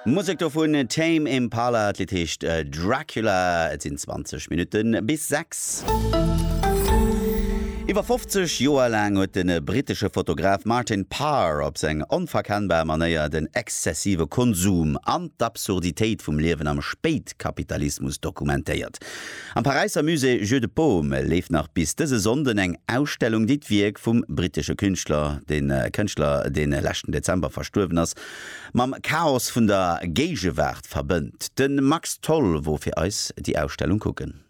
Musek dovun Tame Impala, d'Lidd heescht Dracula. Et sinn 20 Minutte bis 6. Iwwer 50 Joer laang huet de brittesche Fotograf Martin Parr op seng onverkennbar Manéier den exzessive Konsum an d'Absurditéit vum Liewen am Spéitkapitalismus dokumentéiert. Am Paräisser Musée Jeu de Paume leeft nach bis dëse Sonnden eng Ausstellung, déi d'Wierk vum brittesche Künstler, de Kënschtler, dee leschten Dezember verstuerwen ass, mam Chaos vun der Géigewaart verbënnt. De Max Tholl wor fir eis déi Ausstellung kucken.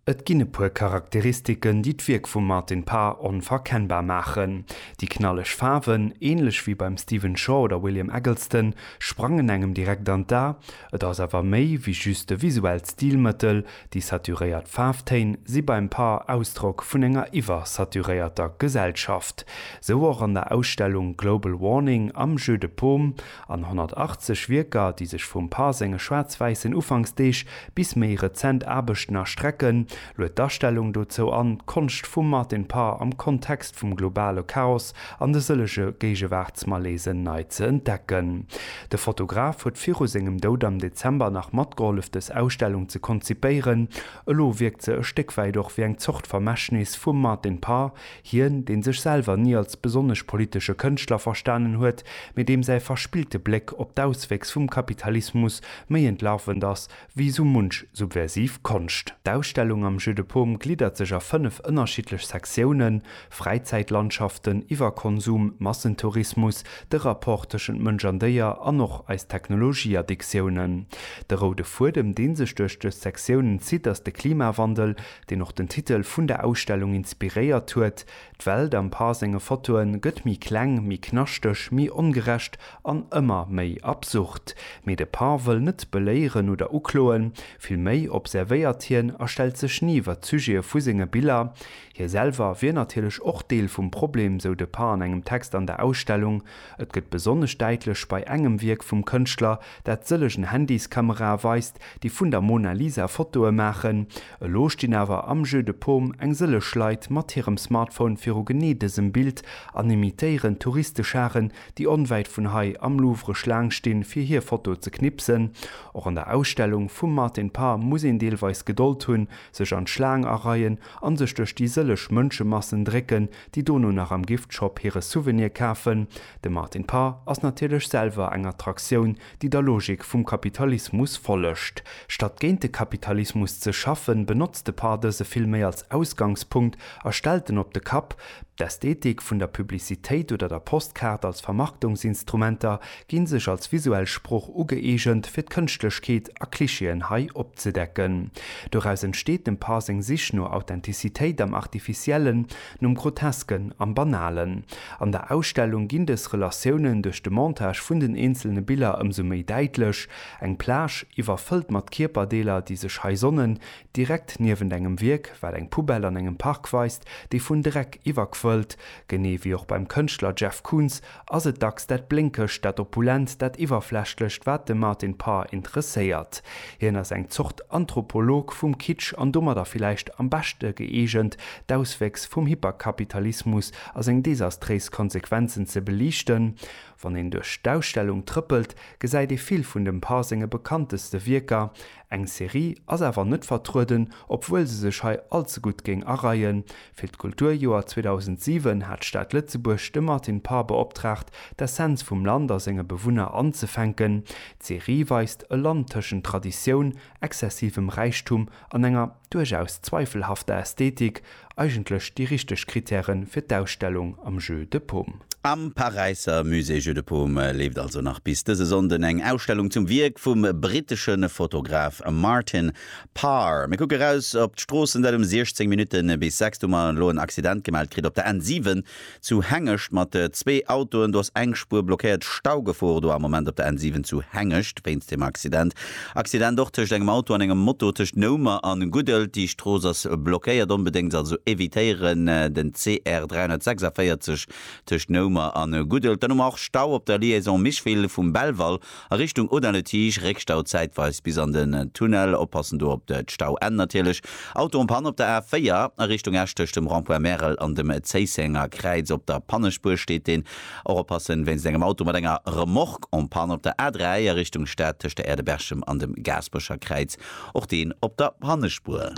Et ginn e puer Charakteristiken, déi d'Wierk vum Martin Parr onverkennbar maachen. Déi knalleg Faarwen, änlech wéi beim Stephen Shaw oder William Eggleston, sprangen engem direkt an d'A, Et ass awer méi wéi just e visuellt Stilmëttel, déi saturéiert Faarftéin si beim Par Ausdrock vun enger iwwersaturéierter Gesellschaft. Sou och an der Ausstellung Global Warning am Jeu de Paume an 180 Wierker, déi sech vum Par senge schwaarz-wäissen Ufanksdeeg bis méi rezent Aarbechten erstrecken, Luet d'Astellung dozou an, d'Konscht vum Martin Parr am Kontext vum globale Chaos an de sëllege Géigewaartsmalaisen nei ze entdecken. De Fotograf huet viru sengem Doud am Dezember nach matgehollef des Ausstellung ze konzipéieren. Elo wierkt se e Stéck wäit och wéi eng Zort Vermächtnis vum Martin Parr, hien, dee sech selwer ni als besonnesch politesche Kënschtler verstanen huet, mee deem säi verspillte Bléck op d'Auswéchs vum Kapitalismus méi entlarvend ass wéi esou munch subversiv Konscht. D'Ausstellung am Jeu de Paume gliddert sech a fënnef ënnerschiddlech Sektiounen, Fräizäitlandschaften, Iwwerkonsum, Massentourismus, de Rapport tëschent Mënsch an Déier an och eis Technologieaddiktiounen. De roude Fuedem, dee sech duerch dës Sektiounen zitt, ass de Klimawandel, deen och den Titel vun der Ausstellung inspiréiert huet, D'Welt am Pa senge Fotoen gëtt méi kleng, méi knaschteg, méi ongerecht an ëmmer méi absurd. Mee de Pa wëll net beléieren oder ukloen, vill méi observéiert hien a stellt sech ni iwwer d'Sujete vu senge Biller. Hie selwer wier natierlech och Deel vum Problem, sou de Pa an engem Text an der Ausstellung. Et gëtt besonnesch däitlech bei engem Wierk vum Kënschtler, dat sëllegen Handyskamerae weist, déi vun der Mona Lisa Fotoe maachen. Elo stinn awer am Jeu de Paume eng sëlleg Leit mat hirem Smartphone viru genee dësem Bild an imitéieren d'Touristescharen, déi onwäit vun hei am Louvre Schlaang stinn, fir hir Foto ze knipsen. Och an der Ausstellung vum Martin Parr muss een deelweis Gedold hunn, sech an d'Schlaang areien an sech duerch déi sëlleg Mënschemassen drécken, déi dono nach am Gift-Shop hire Souvenir kafen. De Martin Parr ass natierlech selwer eng Attraktioun, déi der Logik vum Kapitalismus follegt. Statt géint de Kapitalismus ze schaffen, benotzt de Par dëse vill méi als Ausgangspunkt a stellt en op de Kapp. D'Ästhetik vun der Publicitéit oder der Postkaart als Vermarktungsinstrumenter ginn sech als visuell Sprooch ugëeegent, fir d'Kënschtlechkeet a Klischeeën hei opzedecken. Doraus entsteet dem Par seng Sich no Authentizitéit am Artificiellen, Nom Grotesken am Banalen. An der Ausstellung ginn dës Relatiounen duerch de Montage vun den eenzelne Biller ëmsou méi däitlech, eng Plage, iwwerfëllt mat Kierperdeeler, déi sech hei sonnen, direkt niewent engem Wierk, wat eng Poubelle an engem Park weist, déi vun Dreck iwwerquëllt, genee wéi och beim Kënschtler Jeff Koons ass et dacks dat Blénkegt, dat Opulent, dat Iwwerflächlecht, wat de Martin Parr interesséiert. Hien ass eng Zort Anthropolog vum Kitsch an domadder villäicht am beschte gëeegent, d'Auswéchs vum Hyperkapitalismus a seng desastréis Konsequenzen ze beliichten. Wann een duerch d'Ausstellung trëppelt, gesäit ee vill vun dem Parr senge bekannteste Wierker, Eng Serie ass awer net vertrueden, obwuel se sech hei allze gutt géing areien. Fir d'Kulturjoer 2007 hat d'Stad Lëtzebuerg de Martin Parr beoptraagt, d'Essenz vum Land a senge Bewunner anzefänken. D'Serie weist e Land tëschent Traditioun, exzessivem Räichtum an enger. duerchaus zweifelhafter Ästhetik eigentlech déi richteg Kritäre fir d'Ausstellung am Jeu de Paume. Am Paräisser Musée Jeu de Paume leeft also nach bis dëse Sonnden eng Ausstellung zum Wierk vum brittesche Fotograf Martin Parr. Mir kucke raus op d'Stroossen, dat um 16 Minutte bis 6. Du mer elo en Accident gemellt kritt op der N7. Zu Hengescht mat zwee Autoen, do ass eng Spuer blockéiert. Staugefor do am Moment op der N7 zu Hengescht wéinst dem Accident. Accident och tëscht engem Auto an engem Moto tëscht Noumer an Guddel. Déi Strooss ass blockéiert, onbedéngt also evitéieren den CR 346 tëscht Noumer an Guddel. Dann hu mer och Stau op der Liaison Micheville vum Belval A Richtung Audun-le-Tige, Réckstau zäitweis bis an den Tunnel, oppassen do op de Stauenn natierlech. Auto um Pann op der A4 a Richtung Esch tëscht dem Rond-point Märel an dem Zéissenger Kräiz op der Pannespuer steet deen. Och oppassen wéinst engem Auto mat enger Remorque en panne op der A3 a Richtung Stad tëscht der Aire de Berchem an dem Gaasperecher Kräiz, och deen op der Pannespuer.